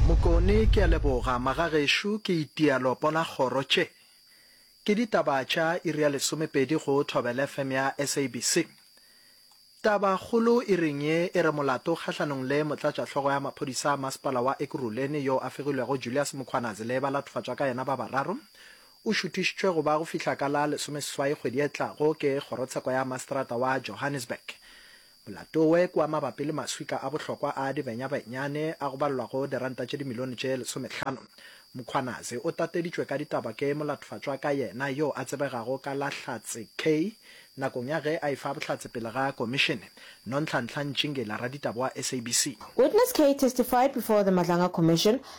Mokone ke a leboga magagešo ke itia lopo la kgoro tše ke ditaba tša iri ya lesomepedi go Thobela FM ya SABC. Taba kgolo iring ye e re molato kgahlanong le motlatšahlogo ya maphodisa a masepala wa Ekurhuleni yo a fegilwego Julius Mkhwanazi le balathofatšwa ka yena ba bararo o šuthišitšwe go ba go fihla ka la lesomeseswai kgwedi e tlago ke kgorotsheko ya maseterata wa Johannesburg Platoe kua mabapi le maswika a bohlokwa a dibenyabenyane a go balelwa go diranta tše dimilione tše lesomehlano. Mkhwanazi o tateditšwe ka ditaba ke molatofatšwa ka yena yo a tsebegago ka la Hlatse Kay nakong ya ge a efa bohlatse pele ga Komišene, Nonhlanhla Ntšingila, raditaba wa SABC. Witness Kay testified before the Madlanga Commission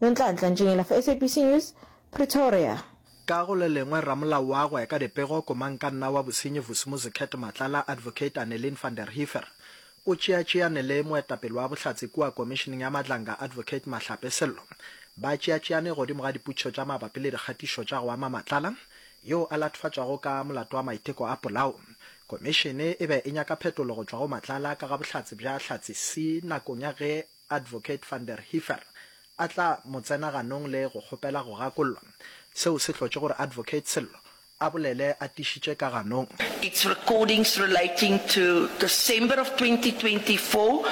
Nonhlanhla Ntšinyela for SABC News, Pretoria. Ka go le lengwe, ramolao wa go ya ka dipego, Komankanna wa Bosenyi Vusumuzi Kurt Matlala, Advocate Annelien van der Heever, o tšeatšeane le moetapele wa Bohlatse kua Komišeneng ya Madlanga, Advocate Mahlape Sello. Ba tšeatšeane godimo ga diputšo tša mabapi le dikgatišo tša go ama Matlala, yo a latofatšwago ka molato wa maiteko a polao. Komišene e be e nyaka phetolo go tšwa go Matlala ka ga bohlatse bja Hlatse Sea nakong ya ge Advocate van der Heever a tla mo tsena ganong le go kgopela go gakollwa, seo se hlotše gore Advocate Sello a bolele a tišitše ka ganong. Its recordings relating to December of 2024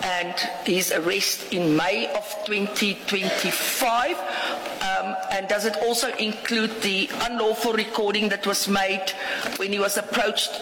and his arrest in May of 2025 and does it also include the unlawful recording that was made when he was approached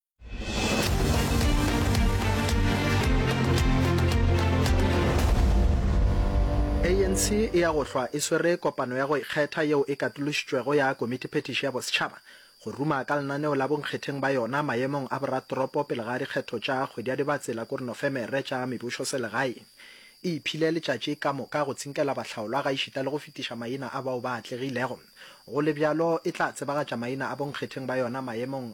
anc e ya go hlwa e swere kopano ya go ikgetha yeo e katološitšwego ya Komitiphetiši ya Bosetšhaba go ruma ka lenaneo la bonkgetheng ba yona maemong a boratoropo pele ga dikgetho tša kgwedi ya Dibatse la kore Nofemere tša mebusoselegaeng. E iphile letšatši ka moka go tsinkela bahlaolwa gaešita le go fetiša maina a bao ba atlegilego. Go le bjalo, e tla tsebagatša maina a bonkgetheng ba yona maemong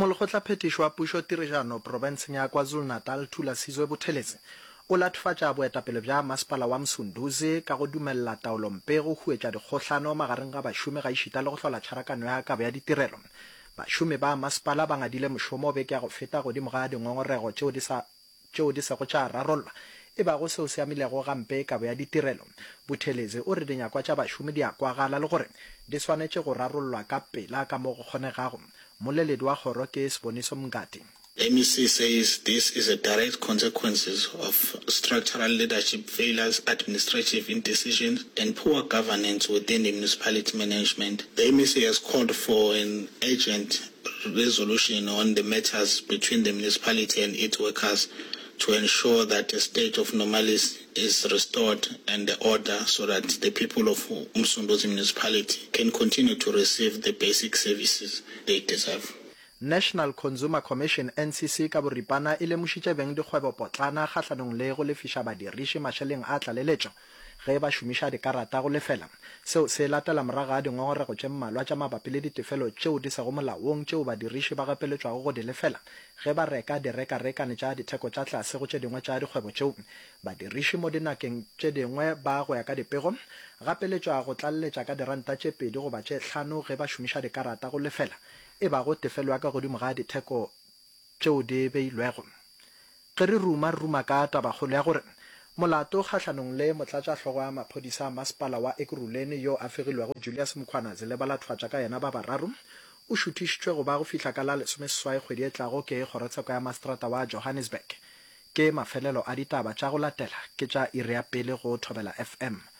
Molekgotlaphethiši wa Pušo Tireganho profenseng ya KwaZulu-Natal Thula Sizwe Buthelezi o latofatša boetapele bja Masepala wa Msunduzi ka go dumelela taolompe go huetša dikgohlano magareng ga bašomi gaešita le go hlola tšharakano ya kabo ya ditirelo. Bašomi ba masepala ba ngadile mošomo beke ya go feta godimo ga dingongorego tšeo di sa tšeo di sego tša rarollwa, e bago seo se amilego gampe kabo ya ditirelo. Buthelezi o re dinyakwa tša bašomi di a kwagala le gore di swanetše go rarollwa ka pela ka mo go kgonegago. Mmoleledi wa kgoro ke Siboniso Mngadi. MEC says this is a direct consequences of structural leadership failures, administrative indecisions and poor governance within the municipality management. The MEC has called for an urgent resolution on the matters between the municipality and its workers to ensure that a state of normalis is restored and the order so that the people of Umsunduzi municipality can continue to receive the basic services they deserve. National Consumer Commission, NCC, ka boripana e lemošitše beng dikgwebopotlana kgahlanong le go lefiša badiriši mašeleng a tlaleletšo Ge ba šomiša dikarata go lefela, seo se latela morago ga dingongorego tše mmalwa tša mabapi le ditefelo tšeo di sego molaong tšeo badiriši ba gapeletšwago go di lefela ge ba reka direkarekane tša ditheko tša tlase go tše dingwe tša dikgwebo tšeo badiriši mo dinakeng tše dingwe ba, go ya ka dipego, gapeletšwa go tlaleletša ka diranta tše pedi goba tše hlano ge ba šomiša dikarata go lefela, e bago tefelo ya ka godimo ga ditheko. tšeo di beilwego. Ge re ruma, ruma ka tabakgolo ya gore molato kgahlanong le motlatšahlogo wa maphodisa a masepala wa Ekurhuleni yo a fegilwego Julius Mkhwana Zileba la thwatša ka yena ba bararo o šuthišitšwe go ba go fihla ka la lesomeseswai kgwedi e tlago ke kgorotsheko ya maseterata wa Johannesburg. Ke mafelelo a ditaba tša go latela ke tša iri ya pele go Thobela FM.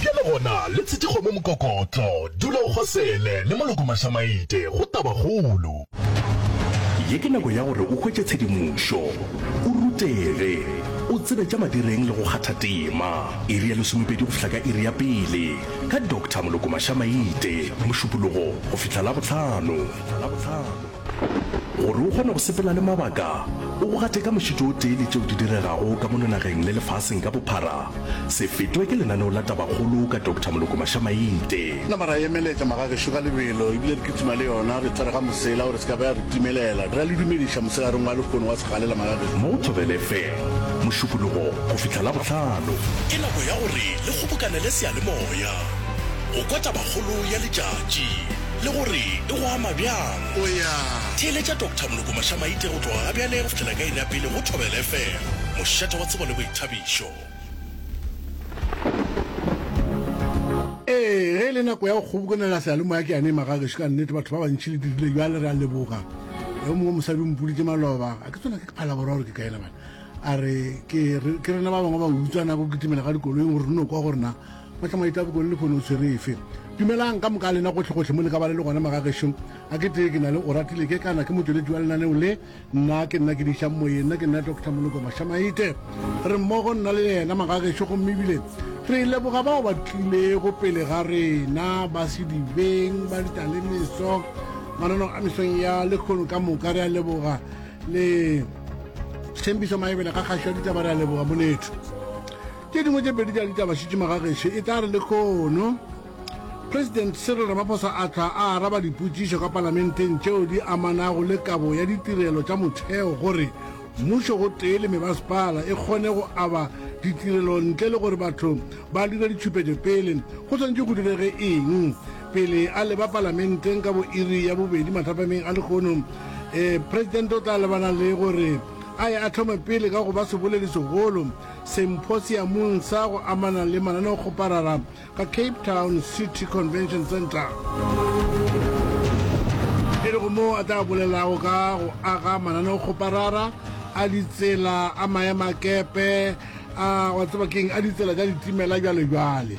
Bjale gona, le tshetše kgomo mokokotlo. Dula o kgosele, le maloko mašamaite, go tabakgolo. Ye ke nako ya gore o hwetše tshedimošo, o rutege, o tsebe tša madireng le go kgatha tema. Iri ya lesomepedi go fihla ka iri ya pele, ka Doctor Moloko Mašamaite, Mošupologo go fihla Labohlano. Gore o kgone go sepela le mabaka, o go gate ka mošito o tee le tšeo di diregago ka mono nageng le lefaseng ka bophara, se fetwe ke lenaneo la Tabakgolo ka Doctor Moloko Mashamainte. Napa ra emeletša magagešo ka lebelo ebile re kitima le yona re tsere ga mosela gore se ka ba ya re timelela. Re a le dumediša mosegareng wa lehono wa segalela magagešo. Mo Thobela FM, Mošupologo go fihla Labohlano. Ke nako ya gore le kgobokanele seyalemoya go kwa Tabakgolo ya letšatši. le gore e go ama bjang. O ya theeletša Doctor Moloko Mašamaite go tloga gabjale go fihlela ka iri ya pele go Thobela FM, mošate wa tsebo le boithabišo. Ee, ge e le nako ya go kgobokanela seyalemoya ke yane e maga gešo ka nnete, batho ba bantši le dirile bjale. Re a leboga yo mongwe mosadi o mpoditše maloba a ke tsona ke phalabora gore ke kaena bana a re ke rena ba bangwe ba utswa nako kitimela ga dikoloing gore re no kwa gorena Mahla Maita Bokone lehono o tshwere efe? Dumelang ka moka lena gohle-gohle mo le ka ba le le gona magagešo a ke tee ke na le Oratile ke kana ke motšweletši wa lenaneo le nna ke nna ke dišang moyeng nna ke nna Doctor Moloko Mašamaite re mmogo nna le yena magagešo gomme ebile re leboga bao ba tlilego pele ga rena ba sedibeng ba ditalemeso manano a mesong ya lekgono ka moka re a leboga le tshembiso maebele ga kgašo ditaba re a leboga monetho Tše dingwe tše pedi tša ditaba šitšima ga gešo e tla re lekono. President Cyril Ramaphosa a tla a araba dipotšišo ka palamenteng tšeo di amanago le kabo ya ditirelo tša motheo gore mmušo gotee le mebasepala e kgone go aba ditirelo ntle le gore batho ba dire ditšhupetšo pele go swanetše go direge eng. Pele a leba palamenteng ka bo iri ya bobedi mathapameng a lekono, eh, President o tla lebana le gore a ye a thome pele ka go ba seboledi segolo Semphosiamong sa go amana le mananeokgoparara ka Cape Town City Convention Centre. E lego moo a tla bolelago ka go aga mananeokgoparara a ditsela, a maemakepe, a wa tseba keng, a ditsela tša ditimela, bjalobjale.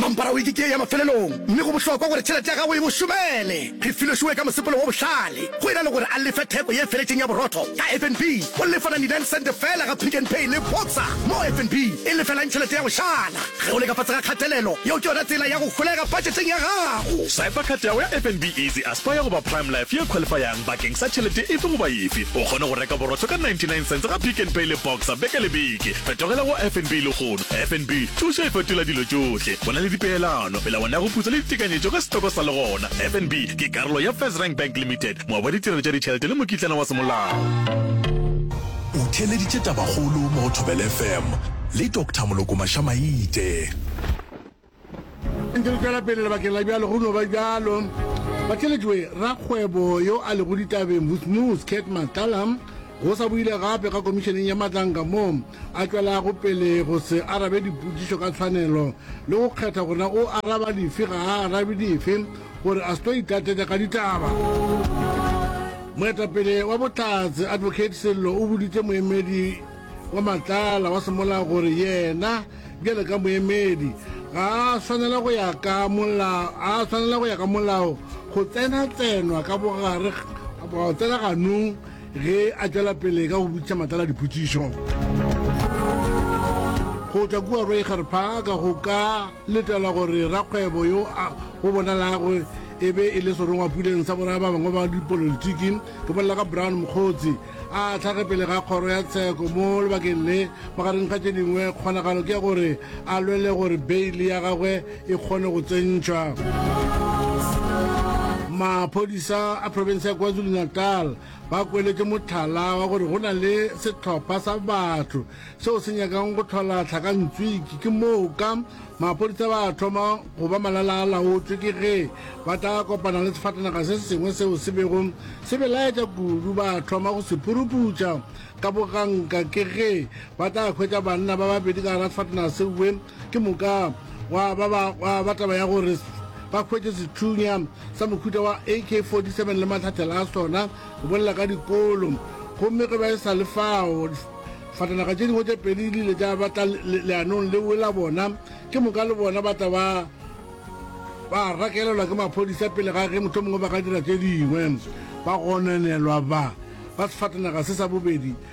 Mampara wiki ke ya mafelelong, mme go bohlokwa gore tšhelete ya gago e mo šomele. Phefilo Shuwe ka mosepelo wo bohlale go ena le gore a lefe theko ye feletšeng ya borotho ka FNB. O lefa 99 sente feela ga Pick n Pay le Boxer, mo FNB e lefelang tšhelete ya go šala. Ge o le ka fase ga kgatelelo, yeo ke yona tsela ya go holega budgeteng ya gago. Swipa card ya gago ya FNB Easy Aspire goba Prime Life ye qualifayang bakeng sa tšhelete efe goba efe. O kgone go reka borotho ka 99 sente ga Pick n Pay le Boxer beke le beke. Fetogela go FNB le go. Lehono, FNB, thušo e fetola dilo tšohle. Go na le dipeelano, melawana ya go putsa le ditekanyetšo ka setoko sa le gona. FNB ke karolo ya FirstRand Bank Limited, moabi wa ditirelo tša ditšhelete le mokitlana wa semolao. O theeleditše tabakgolo mo go Thobela FM le Doctor Moloko Maša-Maite. Ntse re tšwela pele lebakeng la bjalo go no ba bjalo ba tšeletšwe rakgwebo yo a lego ditabeng Vusmus Cat Matlalam go sa boile gape ga komišeneng ya matlanka moo a tšwelago pele go se arabe dipotšišo ka tshwanelo le go kgetha gore na o araba dife ga a arabe dife gore a se tlo itlatetša ka ditaba. Moetapele wa Bohlatse Advocate Sello o boditše moemedi wa Matlala wa semolao gore yena Bjale ka moemedi, ga a swanela go ya ka molao, a swanela go ya ka molao go tsena tsenwa ka bogare go tsena ganong ge a tšwela pele ka go botšiša matlala dipotšišo. Go tšwa kua Roiger Park go ka letelwa gore rakgwebo yo a go bonalago e be e le serongwapuleng sa boraya ba bangwe ba dipolotiki, ke bolela ka Brown Mokgotsi, a tlhage pele ga kgoro ya tsheko mo lebakeng le magareng ga tše dingwe kgonagalo ke ya gore a lwele gore beile ya gagwe e kgone go tsentšwa maphodisa a province ya kwazulu-natal ba kweletše motlhala wa gore go na le setlhopha sa batho seo se nyakang go tlhola tlhakantswiki. Ke moo ka maphodisa ba a thoma go ba malala a laotšwe ke ge ba tla kopana le sefatanaga se sengwe seo se bego se belaetša kudu, ba thoma go se phuruputša ka boganka ke ge ba tla hwetša banna ba babedi ka gara sefatanaga sewe. Ke moka gwa ba ba gwa ba taba ya gore s- ba hwetše sethunya sa mohuta wa AK-47 le mahlathela a sona go bolela ka dikolo. Gomme ge ba e sa le fao, s- fatanaga tše dingwe tše pedi di ile tša ba tla le- le- leanong leo la bona. Ke moka le bona ba tla ba ba rakelelwa ke maphodisa pele ga ge mohlomongwe ba ka dira tše dingwe ba gononelwa ba ba sefatanaga se sa bobedi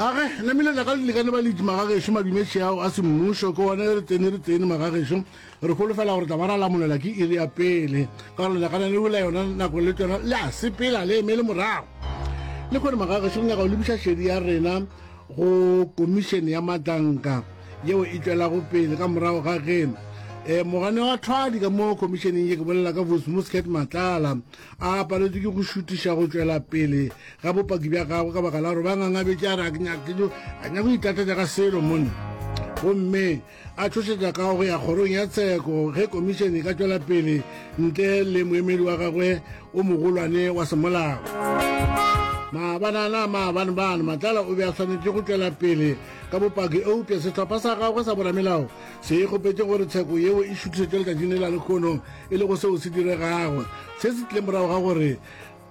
a re na meletla ka lelekane ba ledi magagešo madumetše ao a semmušo ke one re tsene re tsene magagešo re folofela gore tla ba ra lamolela ke iri ya pele ka gore lelakana le wela yona nako le tsona le a sepela le emele morago le kgone magagešo re nyaka go lebiša šedi ya rena go komišene ya matanka yeo e tšwelago pele ka morago ga ge um mogane wa thwadi ka mo komišeneng ye ke bolela ka vosmuscat matlala a paletšwe ke go šutiša go tšwela pele ga bopaki bja gagwe ka baka la gore ba ngangabetše a re a nyake go itlatatša ka selo mone gomme a tšhošetša ka go ya kgorong ya tsheko ge komišene e ka tšwela pele ntle le moemedi wa gagwe o mogolwane wa semolao maabanana maabane bane matlala o be a swanetše go tšwela pele ka bopaki eupša sehlopha sa gagwe sa boramelao se e kgopetše gore tsheko yeo e šutišetšwe letšatšing le la lekgono e lego seo se diregago se se tlile morago ga gore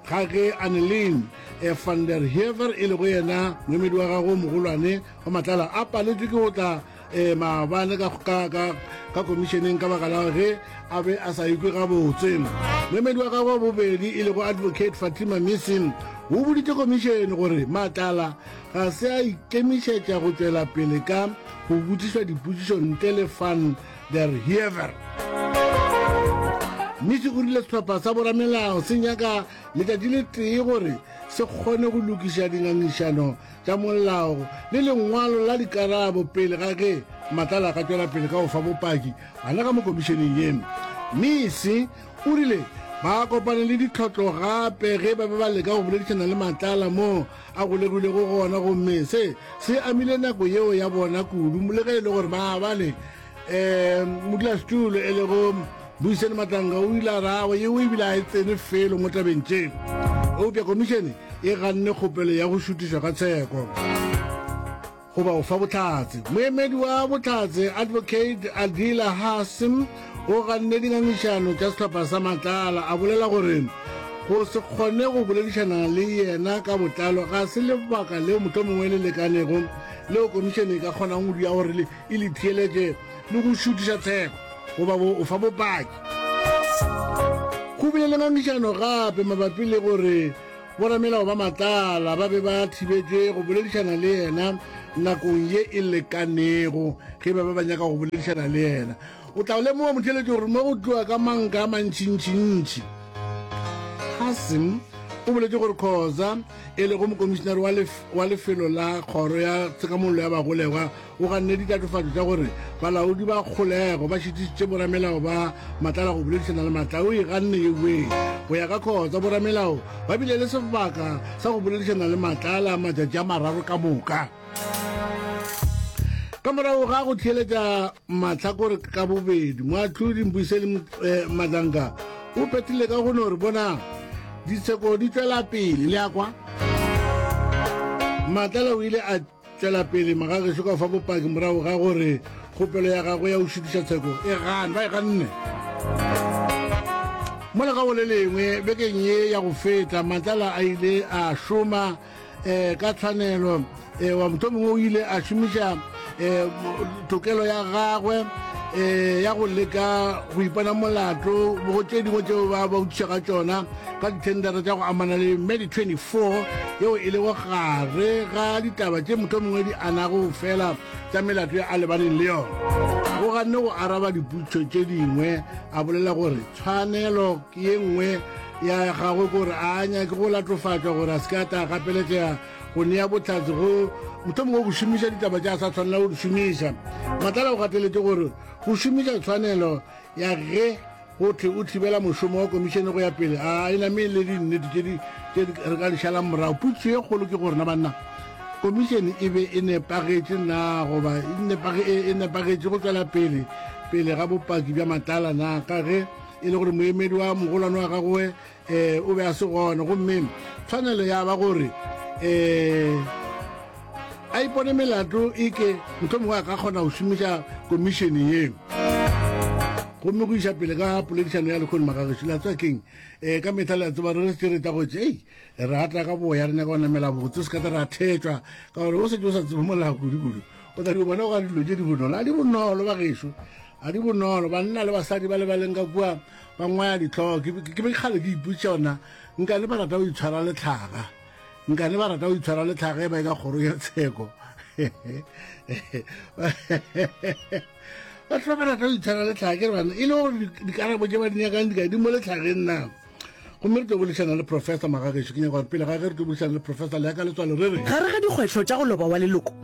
ga ge Annelien e van der Heever e lego yena moemedi wa gago mogolwane wa matlala a paletšwe ke go tla um maabane ka komišeneng ka baka la ge a be a sa ikwe gabotse moemedi wa gago wa bobedi e lego advocate fatima missin o boditše komišene gore matlala ga se a ikemišetša go tšwela pele ka go botšišwa dipotšišo ntle le fan der Hiever. Misi o rile sehlopha sa boramelao se nyaka letšatši le tee gore se kgone go lokiša dingangišano tša molao le lengwalo la dikarabo pele ga ge matlala ka tšwela pele ka go fa bopaki gana ka mo komišeneng ye. Misi o rile ba kopane le ditlhotlo gape ge ba be ba leka go boledišana le matlala moo a golegilego gona, gomme se se amile nako yeo ya bona kudu, le ge e le gore maabane um modulasetulo e lego Buiseni Matlanga o ile a ragwe yeo e bile a e tsene felo mo tabeng tše. Eupša komišene e ganne kgopelo ya go šutišwa ga tsheko. goba go fa bohlatse. Moemedi wa bohlatse, Advocate Adila Hasim, o ganne dingangišano tša sehlopha sa Matlala, a bolela gore go se kgone go boledišana le yena ka botlalo ga se lebaka leo mohlomongwe le lekanego leo komišene e ka kgonang go dira gore e le theeletše le go šutiša tsheko goba go fa bopaki go bile le ngangišano gape mabapi le gore Boramelao ba matlala ba be ba thibetšwe go boledišana le yena nakong ye e lekanego ge ba be ba nyaka go boledišana le yena. O tla lemoga motheletši gore mo go tloa ka manka a mantšintšintši. Hassim o boletše gore Khoza, e lego mokomišinare wa lefelo la kgoro ya tshekamollo ya bagolegwa, O ganne ditatofatšo tša gore balaodi ba kgolego ba šitišitše boramelao ba matlala go boledišana le matla. O e ganne ye wee. Go ya ka Khotsa, boramelao ba bile le sebaka sa go boledišana le matlala matšatši a mararo ka moka. Ka morago ga go theeletša mahlakore ka bobedi, Moahlodi Mbuyiseni Madlanga o phethile ka go no re, Bonang, ditsheko di tšwela pele, le a kwa? Matlala o ile a. tšwela pele magagešo ka fa bopaki morago ga gore kgopelo ya gagwe ya go šitiša tsheko e gane ba e ganne mo legago le lengwe bekeng ye ya go feta matlala a ile a šoma um ka tshwanelo um wa mohlomongwe o ile a šomiša um tokelo ya gagwe um ya go leka go ipana molato go tše dingwe tseo ba ba utisa ka tsona ka dithendara tša go amana le medi 24 yeo e lego gare ga ditaba tše moto mongwe di anago fela tša melato ya a lebaneng le yona go ganne go araba diputso tše dingwe a bolela gore tshwanelo ke ye nngwe ya gagwe kore a nyake go latofatšwa gore a se ka ta gapeletšega go nea bohlatse go mohlomongwe go šomiša ditaba tša sa tshwanela go di šomiša matlala o gateletše gore go šomiša tshwanelo ya ge go tle o thibela mošomo wa komišene go ya pele a e name le dinnete tše re ka di šalang morago putso ye kgolo ke gorena banna komišene e be e nepagetše na goba e nepagetše go tswela pele pele ga bopaki bja matlala na ka ge e le gore moemedi wa mogolwane wa gagoe um o be a se gona gomme tshwanelo ya ba gore um a ipone melato e ke motlho mongwe a ka kgona go šomiša komišene yeo gomme go iša pele ka poledišano ya lekgone magageši la tswa keng um ka metlha le a tseba re se re ta gotse ei re atla ka boya re nyaka go namela botse se ka tla re a thetšwa ka gore o setse o sa tsebe molao kudu-kudu o tla di bona go ga dilo tse di bonolo a di bonolo bagešo a di bonolo banna le basadi ba lebaleng ka kua ba ngwaya ditlhogo ke be kgale ke ipotsa ona nkane ba rata go itshwara letlhaga nkane ba rata go itshwara letlhaga e ba e ka kgoro ya tsheko batho ba ba rata go itshwara letlhaga ke re bana e le gore dikarabo tse ba di nyakang di ka di mo letlhageng na gomme re tlo bolešana le professor magagešo ke nyaka gore pele ga ge re tlo bolešana le professor le ya ka letswalo re re gare ga dikgwetlho tša go loba wa leloko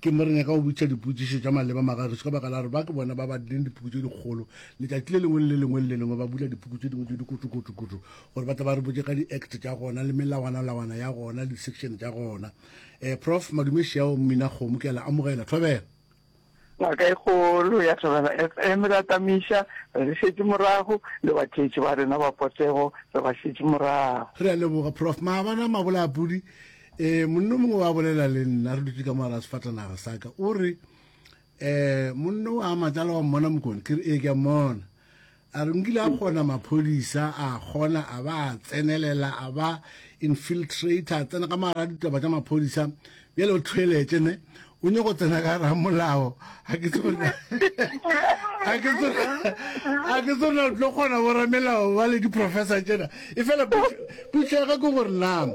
Ke mo re nyaka go botšiša dipotšišo tša maleba magešo ka baka la gore ba ke bona ba badileng dipuku tše dikgolo. Letšatši le lengwe le le lengwe le le lengwe ba bula dipuku tše dingwe tše dikutšukutšukutšu gore ba tle ba re botše ka di-act tša gona le melawanalawana ya gona le di-section tša gona. Um Prof. Madumešiao Mminakgomo, ke a le amogela. Thobela. Ngaka e kgolo ya Thobela FM re atamiša, re le šetše morago, le batheetši ba rena ba potego re ba šetše morago. Re a leboga Prof. Maabane a Mabolaapudi, Eh, monno mongwe wa bolela le nna re dutse ka mogala sefatanaga sa ka o re eh monno wa matsala wa mmona mokone ke re ee ke a mmona a re nkile a kgona maphodisa a kgona a ba a tsenelela a ba infiltrator a tsena ka mogala ditaba tša maphodisa bjale o thweletše ne o nyoko tsena ka ra molao a ke tsona a ke tsona a ke tsona o tlo kgona go ramelao ba le di-professor tsena e fela putlhega ke gore na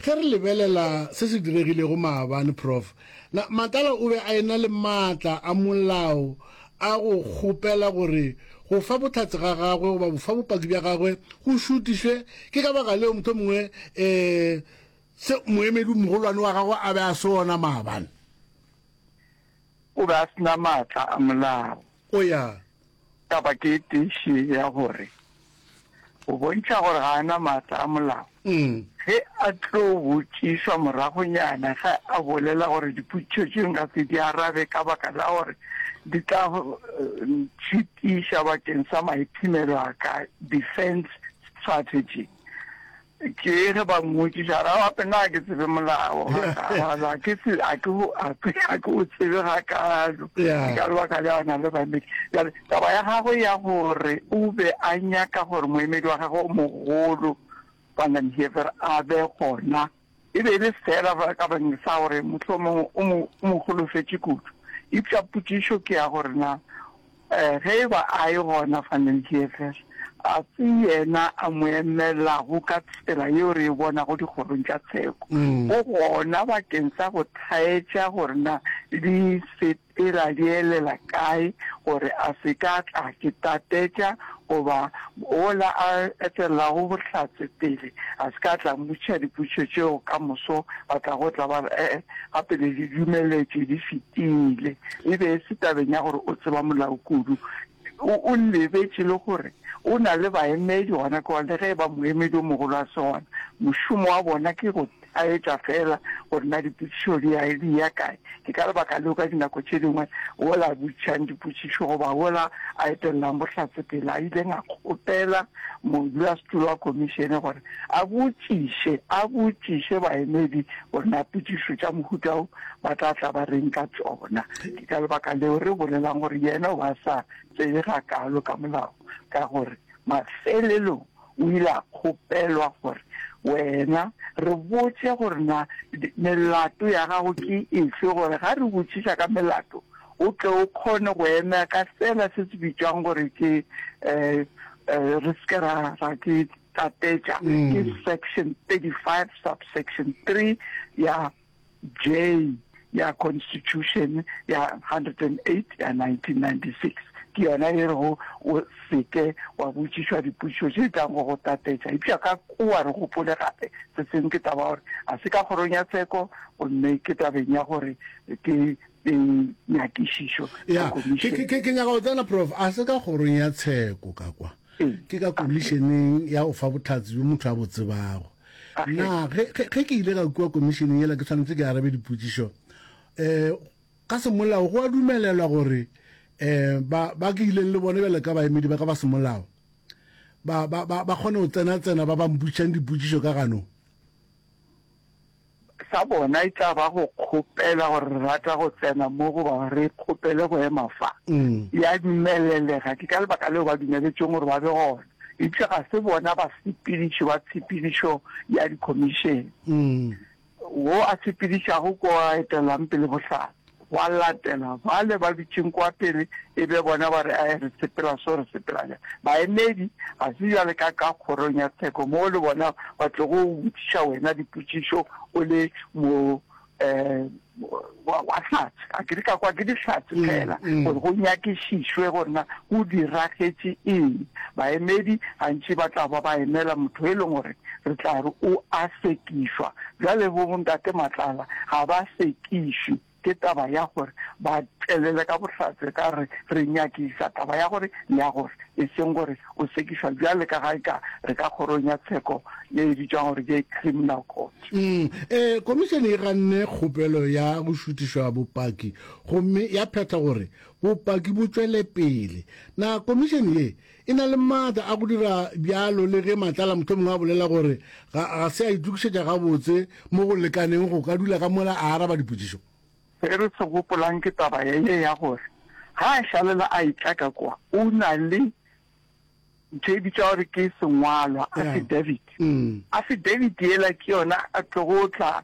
ge re lebelela se se diregilego maabane prof na matala o be a ena le maatla a molao a go kgopela gore go fa botlhatse ga gagwe goba bofa bopaki bja gagwe go šutišwe ke ka baka leo motho mongwe um Se moemedi-mogolwane wa gagwe a be a se ona maabane. O be a se na maatla a molao. O ya. Taba ke e tee še ya gore go bontšha gore ga a na maatla a molao, ge a tlo botšišwa moragonyana ge a bolela gore dipotšišo tše nka se di arabe ka baka la gore di tla ntšhitiša bakeng sa maiphemelo a ka, defence strategy. Ke ge ba mmotšiša, ra gape na ke tsebe molao gakalo, a ke se a ke a ke a ke o tsebe gakalo Yeah. ka lebaka le ona le baemedi jale taba ya gagwe ya gore o be a nyaka gore moemedi wa gagwe o mogolo Van den Heever a be gona E be e le feela ka bakeng sa gore mohlomongwe o mo, o mo holofetše kudu. Eupša potšišo ke ya gore na um ge e ba a e gona Van den Heever, ga se yena a mo emelago ka tsela yeo re e bonago dikgorong tša tsheko, go gona bakeng sa go thaetša gore na di se E ra bielela kae gore a se ka tla ke tatetša goba wola a etelelago Bohlatse pele a se ka tla mmotšiša dipotšišo tšeo ka moso? Ba tla go tla ba re, Ee, gape le di dumeletšwe di fetile. E be e se tabeng ya gore o tseba molao kudu, O, o lebetše le gore O na le baemedi gona kwa, le ge e ba moemedi o mogolo a se gona. Mošomo wa bona ke go taetša feela gore na dipotšišo di ya, di ya kae. Ke ka lebaka leo ka dinako tše dingwe wola a botšang dipotšišo goba wola a etelelang bohlatse pele a ileng a kgopela modulasetulo wa Khomišene gore A botšiše, a botšiše baemedi gore na potšišo tša mohuta wo ba tla tla ba reng ka tšona. Ke ka lebaka leo re bolelang gore yena o ba sa tsebe gakaalo ka Molao, ka gore mafelelong o ile a kgopelwa gore, Wena, re botše gore na melato ya gago ke efe, gore ga re botšiša ka melato o tle o kgone go emea ka sela se se bitšwago gore ke, um, um, re se ke ra, ra ke, Tlatetša ke section 35 subsection 3 ya J ya Constitution ya 108 ya 1996. Ke yona e rego o se ke wa botšišwa dipotšišo tše di tlago go tlatetša. Eupša ka kua re gopole gape se sengwe, ke taba ya gore ga se ka kgorong ya tsheko gomme ke tabeng ya gore ke nyakišišo ya komišene. Ke nyaka go tsena, Prof. A se ka kgorong ya tsheko ka kwa. Ke ka komišeneng ya go fa bohlatse bjo motho a bo tsebago. Na ge, ge, ge ke ile ka kua komišeneng yela ke tshwanetse ke arabe dipotšišo? Um ka semolao go a dumelelwa gore um ba, ba ke ileng le bona bjalo ka baemedi ba ka ba semolao ba, ba, ba, ba kgone go tsena-tsena ba ba mpotšišang dipotšišo ka ganong? Sa bona e tla ba go kgopela gore re rata go tsena mo goba re kgopele go ema fa. Ya dumelelega, ke ka lebaka leo ba dumeletšweng gore ba be gona. Eupša ga se bona basepediši ba tshepedišo ya dikhomišene. Wo a sepedišago ke o a etelang pele bohlatse. Gwa latela bale ba dutšeng kwa pele, e be bona ba re, Ae, re sepela so, re sepela bjang. Baemedi, ga se bjale ka ka kgorong ya tsheko moo le bona ba tlogo go botšiša wena dipotšišo o le mo wa wa hlatse. A ke di ka kwa ke dihlatse fela gore go nyakišišwe gore na go diragetše eng. Baemedi gantši ba tla ba ba emela motho e leng gore re tla re o a sekišwa. Bjale bo Ntate Matlala ga ba se Išwi ke taba ya gore ba tšwelele ka bohlatse ka re re nyakiša taba ya gore le ya gore, e seng gore o sekišwa bjale ka ga e ka re ka kgorong ya tsheko ye e bitšwago gore ke Criminal Court. Umm e, Komišene e ganne kgopelo ya go šutišwa bopaki gomme ya phetha gore bopaki bo tšwele pele. Na Komišene ye E na le maatla a go dira bjalo le ge matlala mohlomongwe a bolela gore ga, ga se a itokišetša gabotse mo go lekaneng go ka dula ka mola a araba dipotšišo. Se re se gopolang ke taba ya ye ya gore ga a šalela a etla ka kwa, o na le ntho e bitšwa gore ke sengwalwa, affidavit. Affidavit yela ke yona a tlogo tla